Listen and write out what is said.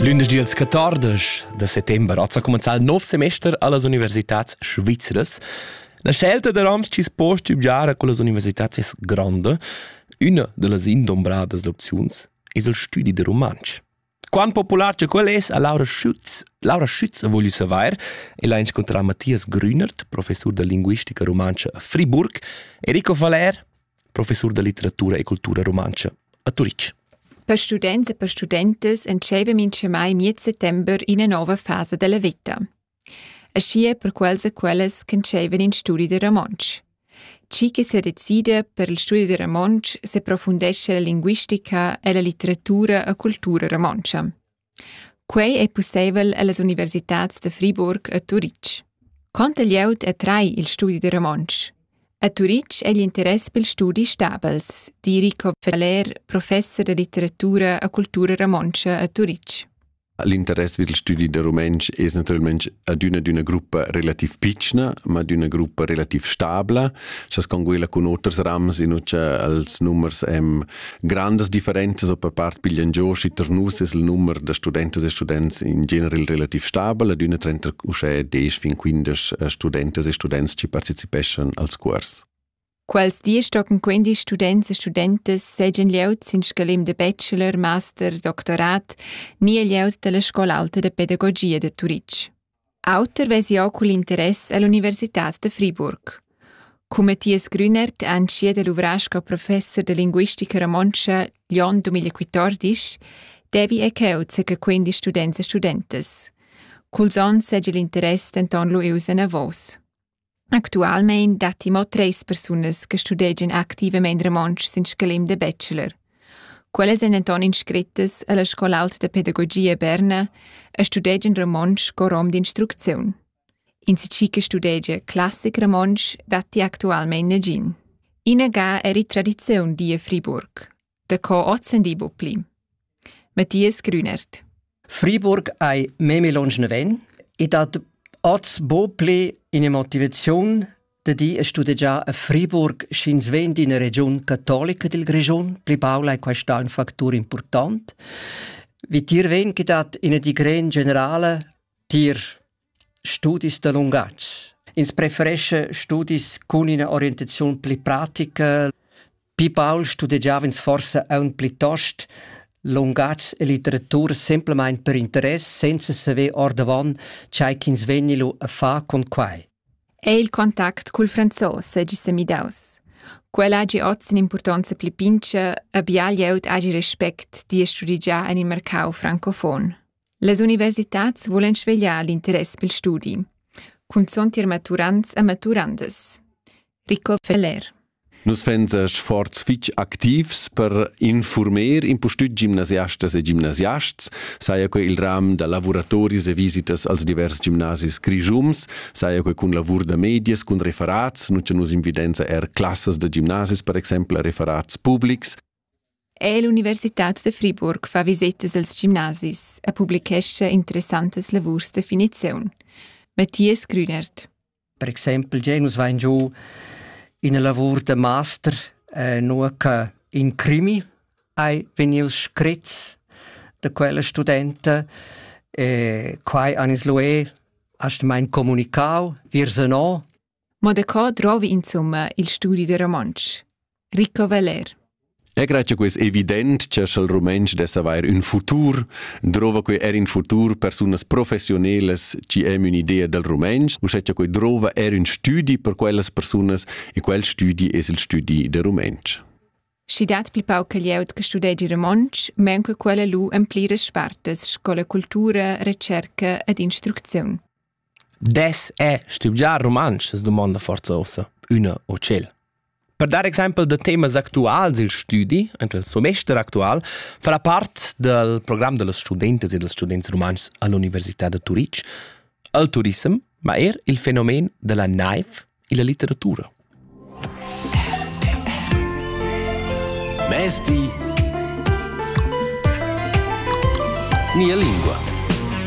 Lündeschdi als 14 da settember ha cumenzà il nov semester allas universitats svizras. La scelta da Roms chi post studiar con las universitats es grande. Üna da las indombradas opziuns es il studi de rumantsch. Quant popular che quel es, ha Laura Schütz, Laura Schütz voglio savoir e l'ha incontrà Matthias Grünert, professor da linguistica rumantscha a Friburg, e Rico Valer, professur da litteratura e cultura rumantscha a Turitg. Per students e per studentas entscheiva mintgamai miez settember ina nova fasa della veta. Aschi è per quels e quellas che entscheivan in studi de romontsch. Chi che se decida per il studi de romontsch se profundesce la linguistica e la litteratura e cultura romontschia. Quei ei pusseivel ellas universitads da Friburg e Turitg. Conter glieud e trai il studi da romontsch. A Turitg ei l'interess pil studi stabels, di Rico Feller, professor da litteratura e cultura romontscha a Turitg. L'interess vid il studi da rumentsch è naturalmente ad una d'una gruppa relativ pitschna, ma d'una gruppa relativ stabla. Sas con quella con oters rams in ucha als nummers em Grandas differenzas per part piglian giò schi tar nus es il numer da studentas e students in general relativ stabel ad üna trenta uschè desch fin quindesch eh, studentas e students chi partecipeschan als cuors. Quels diesch tochen quindi students e studentas seigien lieut sin scalem de bachelor, master, doctorat, ni e lieut dalla scola alta de pedagogia de Turitg. Auter vesi jeu cugl interess ell'universitad da Friburg. Cu Mathias Grüner t'è entschiet a luvrar sco professor da linguistica romontscha l'onn 2014, devi è cheu ca quindisch students e studentas. Culs onns seigi l'interess denton lu ius enavos. Actualmein datti mo treis persunas che studegian activamein romontsch sin scalem da bachelor. Quellas ein denton inscrittas alla Scola aulta da pedagogia Berna e studegian romontsch co rom d'instrucziun. Insatgi che studegia classic romontsch datti actualmein nagin. Ina ga eri tradiziun die Friburg. Daco ozendi bu pli. Matthias Grünert. Friburg ei meme longe ven e dat oz bo ple in motivazion de di a studegiar a Friburg sch'ins ven d'ina region cattolica del Grischun, pli paula è questa un factor important, wie tier ven che dat ina di gran generale tier Studis da lungatg. Ins preferescha studis cun ina orientaziun pli pratica. Pi baul studegiava ins forsa aunc plitost lungatgs e literatura semplamain per interess, senza saver ordavon tgei ch'ins vegni lu a far con quei. È il contact cul franzos segi semidaus. Quel hagi oz impurtonza pli pincha, a bial glieud hagi respect di e studigià en il mercau francofon. Las universitads vulan svegliar l'interess pel studi, cunzont ir maturants e maturandas. Rico Feller Nus vegns sforz fitg activs per informer impustüt gimnasiastas e gimnasiasts, saja que il ram da lavuratoris e visitas als divers gimnasis grischums, saja que cun lavur da medias, cun referats, nun cha nus invidenza er classas da gimnasis per exaimpel a referats publics, Er l'Universitad da Friburg fa visetas als gimnasis e publichescha interessantas lavurs da finiziun. Matthias Grünert. Per exempel già nus vain giù ina lavur da master eh, nur che in crimi hai vegnius scrit da quella studenta e quai anis lué hast mein comunicau virse no Mo da co drovi insumma il studi da romontsch? Rico Veller Egra che quis evident che sch'el rumentsch dess avair ün futur, drova quei er in futur persunas professionelas chi hem ün'idea del rumentsch, u sche che quei drova er ün studi per quellas persunas e quel studi es il studi del rumentsch. Schi dat pli pauc glieud che studegi romontsch, men che quella lu en pliras spartas sco la cultura, recerca ed instrucziun. Dess è stivgiar rumantsch? es dumonda forza ossa üna o tschel. Per dar exempel da temas actuals il studi, ent il semester actual, farà part dal program da las studentas e dals students rumantschs a l'Università da Turitg, il turissem, ma er il fenomen da la naiv e la litteratura. Mesti. Nia lingua.